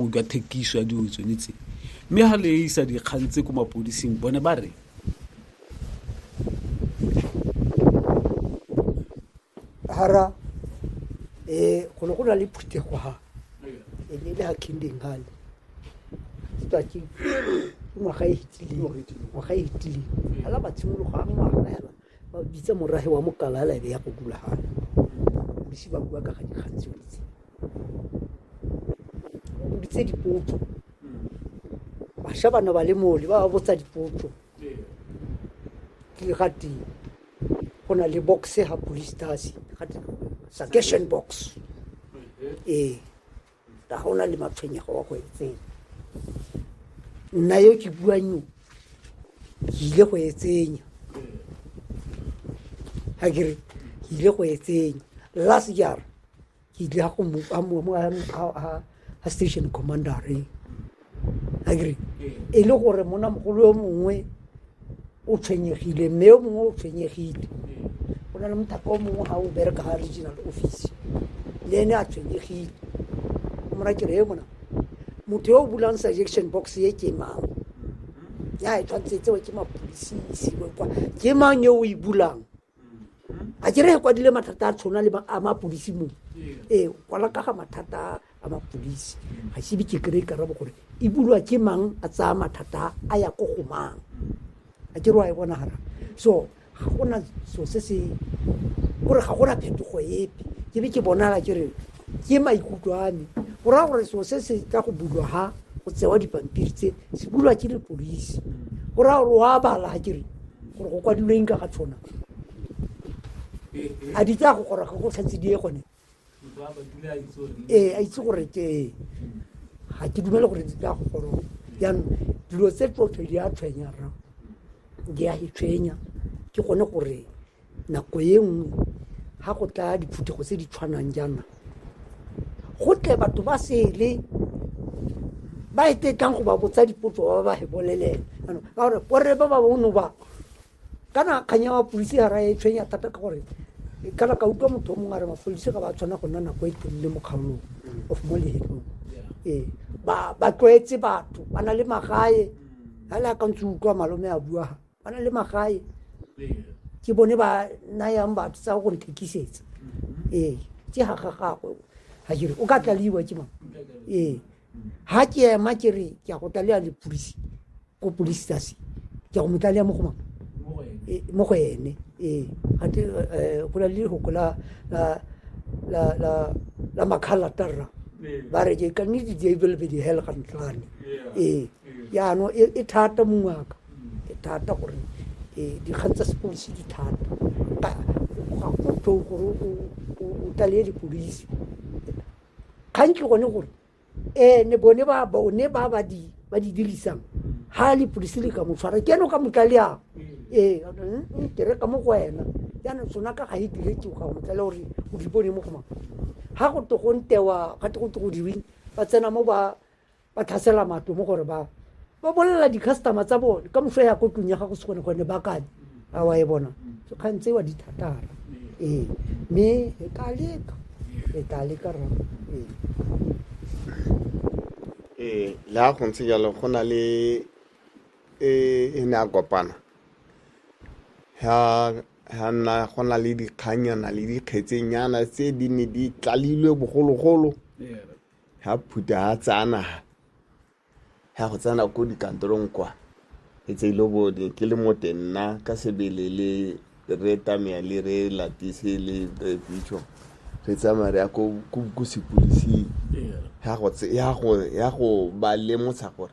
utlwa thekiso ya dilo tsone tse mme ga le isa dikgang tse ko mapodising bone ba re hara um go ne go na le phuthego ha e ne e le ga kindeng gale ke tswa ke ngwaga e fetileng ngwaga e fetileng ala matshimologo a ngwaga fela ba bitsa morahe wa mokala la ebe ya go gulagana bisi ba bua ka ga dikgang tseo tse o bitse dipotso basha bana ba le mole ba ba botsa dipotso ke ga teng go na le boxe ga police stasi ga teng sakession box ee Ka ga o na le matshwenyego wa go etseng nna yo ke buang yo ke ile go etsenya ga kere ke ile go etsenya last jara ke ile ga station commander re agree e le gore mona mogolo yo mongwe o tshwenyegile mme yo mongwe o tshwenyegile go na le mothaka o mongwe ga o bereka ga regional office le ene a tshwenyegile o mora kere e mona motho yo o bulang suggestion box ye ke mang ya e tshwanetse tsewe ke mapolisisi kwa ke mang yo o e bulang a kere kwadile mathata a tshwana le a mapodisi mo ee kwala kaga mathata a mapodisi ga sebe ke kry karabo gore e bulwa ke mang a tsaya mathata a ya ko go mang a kere wa e bonagala so ga gona so se se kore ga gona phetogo epe ke be ke bonala ke re Ke maikutlo a me go raya gore seo se se tla go bulwa ha go tsewa dipampiri tse se bulwa ke lepodisi go raya gore wa bala a kere gore go kwadilweng ka ga tshwana a di tsa go gora ga go tlhatse die gone ee a itse gore ke ga ke dumele gore di tla go goroga jaanong dilo tse tsotlhe di a tshwenyara di a e tshwenya ke gone gore Nako e nngwe ha go tla diphuthego tse di tshwanang jaana go tle batho ba sele ba e tetlang go ba botsa dipotso ba ba e bolelela ka gore borre ba ba bono ba kana kgang ya mapodisi ga ra e tshwenya thata ka gore kana ka utlwa motho o mongwe a re mapodisi ga ba tshwana go nna nako e telele mo kgaolong of mo lehelong ee ba tlwaetse batho ba na le magae ga le akantse utlwa malome a bua ba na le magae ke bone ba nayang batho tsa go nthekisetsa mm-hmm. ee ke ga ga gagwe ga kere o ka tlaliwa ke mang ee ga ke ema ke re ke ya go tlalea le polisi ko polisi tase ke ya go mo tlalea mo go mang ee, mo go ene ee gate eh, go na le lehoko la makgala tarra ee. ba re ke ka nnete di ebelebedi hel ga ntlane ee yaanong e, e thata mongwaka e thata gore e, dikgang tsa sepodisi di thata ga go tho gore o tlale dipodisi kgang ke gone gore ene bone ba bone ba ba di ba di dirisang ha le polisi le ka mo tshwara ke eno ka motlalea ee ke re ka mo go wena yana tsona ka ga e diretse ga go motlalea gore o di bone mo go mang ha go to go ntewa ga to go to go diweng ba tsena mo ba ba tlhasela matlo mo gore ba ba bolelela di-customer tsa bone ka moso ya ko tlong ya gago se gone gone ba kane a wa e bona kgang tsewa di thatara ee mme e ka leka e ka leka ra ee ee le ga go ntse jalo go na le e e ne a kopana ha ha nna go na le dikganyana le dikgetsenyana tse di ne di tlalilwe bogologolo ha phutha ha tsaya naga ya go tsena ko dikantorong kwa e tse ile bone ke le mote nna ka sebele le re tamea le re latise le re pitso re tsamaya re ya ko sepolising ya go ba lemotsha gore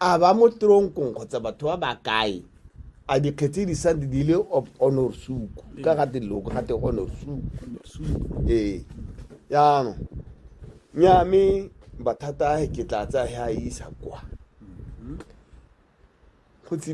a ba mo tronkong kgotsa batho ba ba kae a dikgetsi di sa di le honor suku ka ga te loko ga te honor suku ee jaanong nya me bathata a ke tla tsa ha isa kwa go tsile